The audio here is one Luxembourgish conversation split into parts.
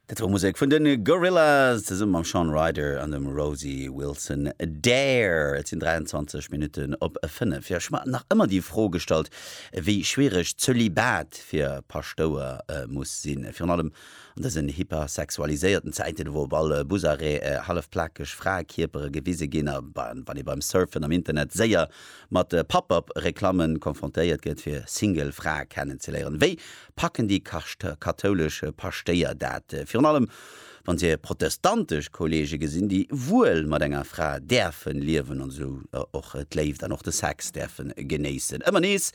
Dat wor Musek vun de Gorillaz zesumme mam Shaun Ryder an dem Rosie Wilson. Dare! Et sinn 23 Minutten op 5. Jo, ech mat nach ëmmer déi Fro gestallt, wéi schwiereg d'Zölibat fir Paschtouer muss sinn. Virun allem an dësen hypersexualiséierten Zäiten, wou op all Busarrêt hallef plakeg Fraekierpere gewise ginn a wann ee beim Surfen am Internet séier mat Pop-Up-Reklamme konfrontéiert gëtt, fir Single Frae kennenzeléieren. Wéi packen déi kathoulesch Paschtéier dat, virun allem wann se hir protestantesch Kollege gesinn, déi wuel mat enger Fra däerfen liewen an esou och d'Léift an och de Sex däerfen genéissen. Ëmmer nees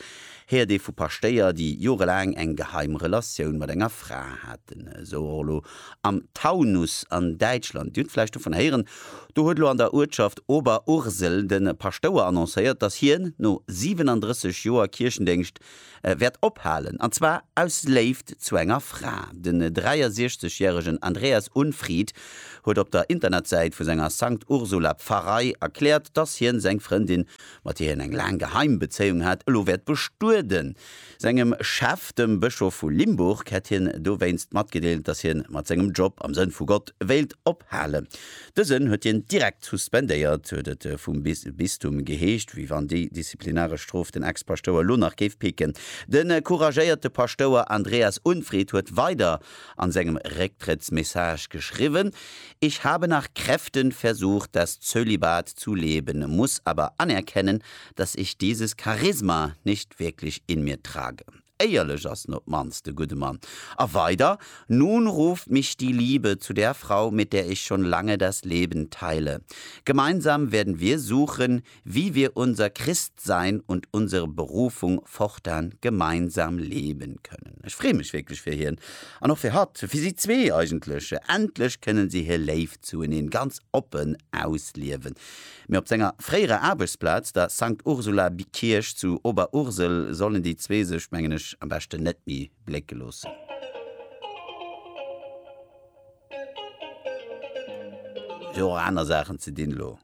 héiert ee vu Paschtéier, déi jorelaang eng geheim Relatioun mat enger Fra haten, esou och elo am Taunus an Däitschland. Dir hutt vläicht dovun héieren, do huet elo an der Uertschaft Oberursel de Paschtouer annoncéiert, datt hien no 37 Joer Kierchendéngscht wäert ophalen, an zwar aus Léift zu enger Fra. Den 63 järegen Andreas Unfried huet op der Internetsäit vu senger Sankt Ursula Pfarrei erkläert, dass hien seng Frëndin, mat där hien eng laang geheim Bezéiung hat, elo wäert bestueden. Sengem Chef, dem Bëschof vu Limburg, hätt hien dowéinst matgedeelt, dass hien mat sengem Job am Sënn vu Gott wéilt ophalen. Dësen huet hien direkt suspendéiert, huet et vum Bistum geheescht, wéi wann déi disziplinaresch Strof den Ex-Paschtouer elo nach géif picken. De couragéierte Paschtouer Andreas Unfried huet weider a sengem Récktrëttsmessage geschriwwen, Ich habe nach Kräften versucht, das Zölibat zu leben, muss aber anerkennen, dass ich dieses Charisma nicht wirklich in mir trage. Éierlech ass en op d'mannst, de gudde Mann. A weider, Nun ruft mich die Liebe zu der Frau, mit der ich schon lange das Leben teile. Gemeinsam werden wir suchen, wie wir unser Christsein und unsere Berufung fortan gemeinsam leben können. Ech freeë mech wierklech fir hien an och fir hatt, fir si zwee eigentlech. Endlech kënnen si hir Léift zueneen ganz oppen ausliewen. Mee op senger fréierer Aarbechtsplaz, der Sankt Ursula Kierch zu Oberursel, sollen déi zwee sech, mengen ech, am beschten net méi blécke loossen. Ech hu jo och aner Saachen ze dinn elo.